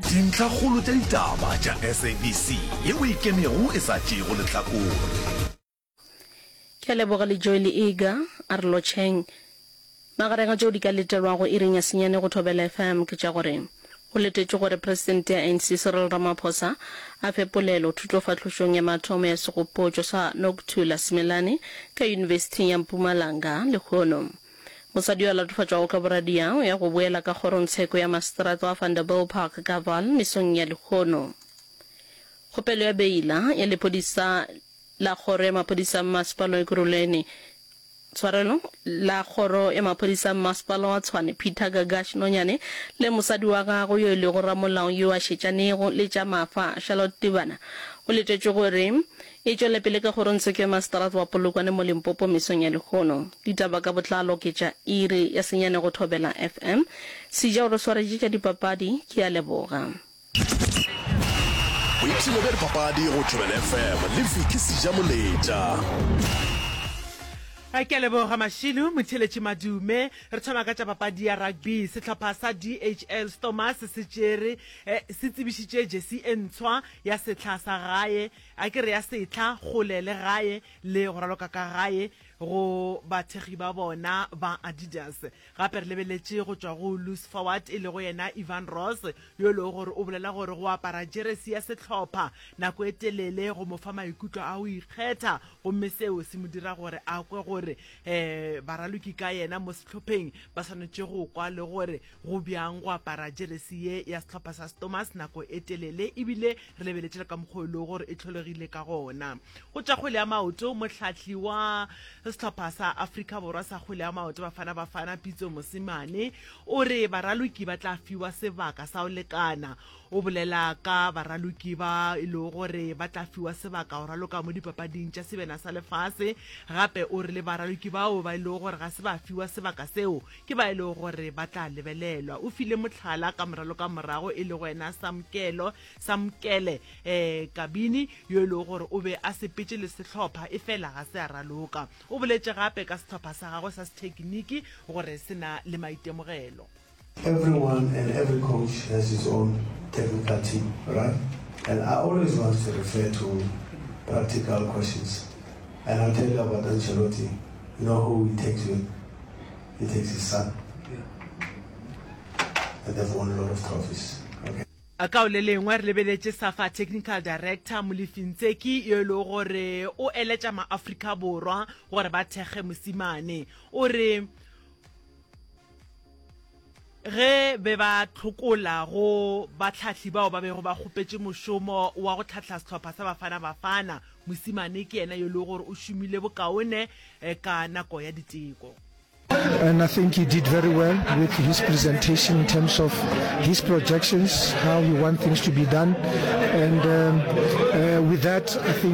Dintlhakgolo tša ditaba tša SABC ye o e kemego e sa tšeego lehlakore. Ke a leboga le Joel Iga a re lotšheng. Magareng a tšeo di ka letelwago iring ya senyane go Thobela FM ke tša gore, Go letetšwe gore Presidente ya ANC Cyril Ramaphosa a fe polelo thutofahlošong ya mathomo ya segopotšo sa Nokuthula Simelane ka Yunibesithing ya Mpumalanga lehono. Mosadi yo a latofatšwago ka boradia o ya go boela ka kgorongtsheko ya Maseterata wa Vanderbijlpark ka Vaal mesong ya lehono. Kgopelo ya beila ya lepodisa la kgoro ya maphodisa mmasepala wa Ekurhuleni, tshwarelo, la kgoro ya maphodisa mmasepala wa Tshwane Peter Gagash Nonyane le mosadi wa gagwe yo e lego ramolao yo a šetšanego le tša mafa Charlotte Tibana o letetšwe gore E tšwele pele ka gore Ntsheko ya Mastrath wa Polokwane mo Limpopo mesong ya lehono. Ditaba ka botlalo ke tša iri ya senyane go Thobela FM. Sija o re swaretše tša dipapadi, ke a leboga. Boipshino bja dipapadi go Thobela FM le Vicky Sija Moletša. Ke a leboga Mashilo. Motheeletši Madume, re thoma ka tša papadi ya rugby. Sehlopha sa DHL Stormers se tšere, se tsebišitše jersey e ntshwa ya sehla sa gae. A ke re ya setlha, kgole le gae, le go raloka ka gae go bathekgi ba bona ba Adidas. Gape re lebeletše go tšwa go loose forward e lego yena Ivan Ross, yo e lego gore o bolela gore go apara jeresi ya sehlopha nako e telele go mo fa maikutlo a go ikgetha gomme seo se mo dira gore a kwe gore baraloki ka yena mo sehlopheng ba swanetše go kwa le gore Go bjang go apara jeresi ye ya sehlopha sa Stormers nako e telele e bile re lebeletše le ka mokgwa o e lego gore e tlholegile ka gona? Go tša kgwele ya maoto, mohlahli wa sehlopha sa Afrika Borwa sa kgwele ya maoto Bafana Bafana, Pitso Mosimane, o re baraloki ba tla fiwa sebaka sa go lekana. O bolela ka baraloki ba e lego gore ba tla fiwa sebaka go raloka mo dipapading tša sebena sa lefase. Gape o re le baraloki bao ba e lego gore ga se ba fiwa sebaka seo Ke ba e lego gore ba tla lebelelwa. O file mohlala ka moralo ka morago e lego yena Samkelo, Samkele, eh, Kabini, yo e lego gore o be a sepetše le sehlopha efela ga se a raloka. O boletše gape ka sehlopha sa gagwe sa sethekiniki gore se na le maitemogelo. Everyone and every coach has his own technical team, right? And I always want to refer to practical questions. And I'll tell you about Ancelotti. You know who he takes with? He takes his son. And they've won a lot of trophies. Okay. Ka o le lengwe re lebeletše SAFA Technical Director Molefi Ntseki yo e lego gore o eletša maAfrika Borwa gore ba thekge mosimane. O re, Ge be ba tlhokola go batlhahli bao ba bego ba kgopetše mošomo wa go tlhahla sehlopha sa Bafana Bafana, mosimane ke yena yo e lego gore o šomile bokaone eh, ka nako ya diteko. And I think he did very well with his presentation in terms of his projections, how he wants things to be done. And um, uh, with that, I think.